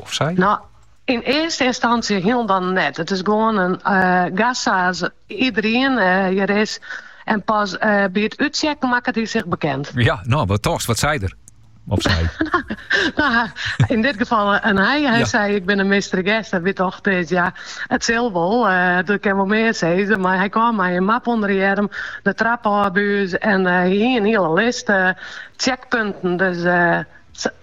of sy? No, yn earste ynstantsje hielendal net. It is gewoan in gast sa't iederien hjir is en pas by it úttsjekken makket hy sich bekend. Ja, no, wat dochst, wat sei der? Of sy? no, yn dit gefal in hy. Hy ja. sei, ik bin in mystery guest. Wy: och, dit, ja, it sil wol. Uh, dat kinne wol mear sizze. Mar hy kaam mei in map ûnder de earm, de trap ôf by ús en uh, hie in hiele list uh, checkpunten. Dus uh,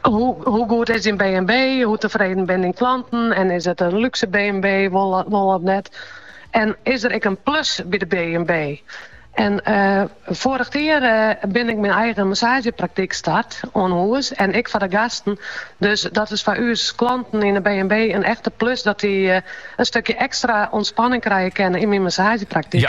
Hoe goed is dyn B&B? Hoe tefreden binne dyn klanten? En is it in lúkse B&B wol of net? En is der ek in plus by de B&B? En foarich jier bin ik myn eigen massaazjepraktyk start oan hûs en ek foar de gasten. Dus dat is foar ús klanten yn de B&B in echte plus dat dy in stukje ekstra ûntspanning krije kinne yn myn massaazjepraktyk.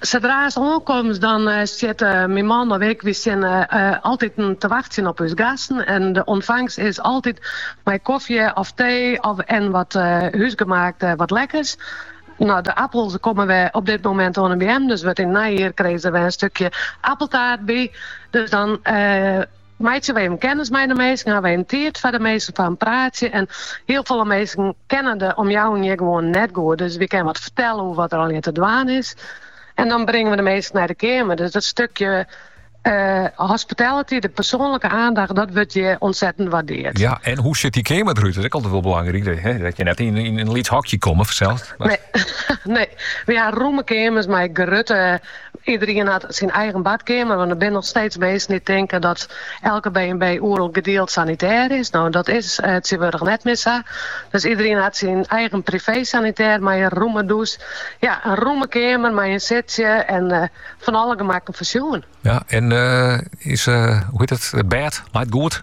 Sadra'st oankomst dan steane myn man of ik, wy steane altyd te wachtsjen op ús gasten en de ûntfangst is altyd mei kofje of tee of en wat húsgemaakt wat lekkers. No de appels komme wer op dit momint oan 'e beammen, dus wurdt yn it neijier krije se wer in stukje appeltaart by, dus dan. Meitsje wy even kennis mei de minsken, ha wy even tiid foar de minsken foar in praatsje. En hiel folle minsken kenne de omjouwing hjir gewoan net goed. Dus wy kinne wat fertelle oer wat der allegear te dwaan is. En dan bringe wy de minsken nei de keamer. Dus dat stukje hospitality, de persoanlike oandacht, dat wurdt hjir ûntsettend wurdearre. Ja, en hoe sjocht dy keamer derút? Dat is altyd wol belangryk. Hè? Dat je net yn, yn in lyts hokje komme fansels. Mar... Nee, nee, wy ha romme keamers mei grutte Iederien hat syn eigen badkeamer, want der binne noch steeds minsken dy't tinken dat elke B&B oeral gedield sanitêr is. No, dat is eh, tsjintwurdich net mear sa. Dus iederien hat syn eigen privé-sanitêr mei in rûme dûs, ja, in rûme keamer mei in sitsje en eh, fan alle gemakken foarsjoen. Ja, en eh, is, eh, hoe hjit it, it bêd? Leit goed?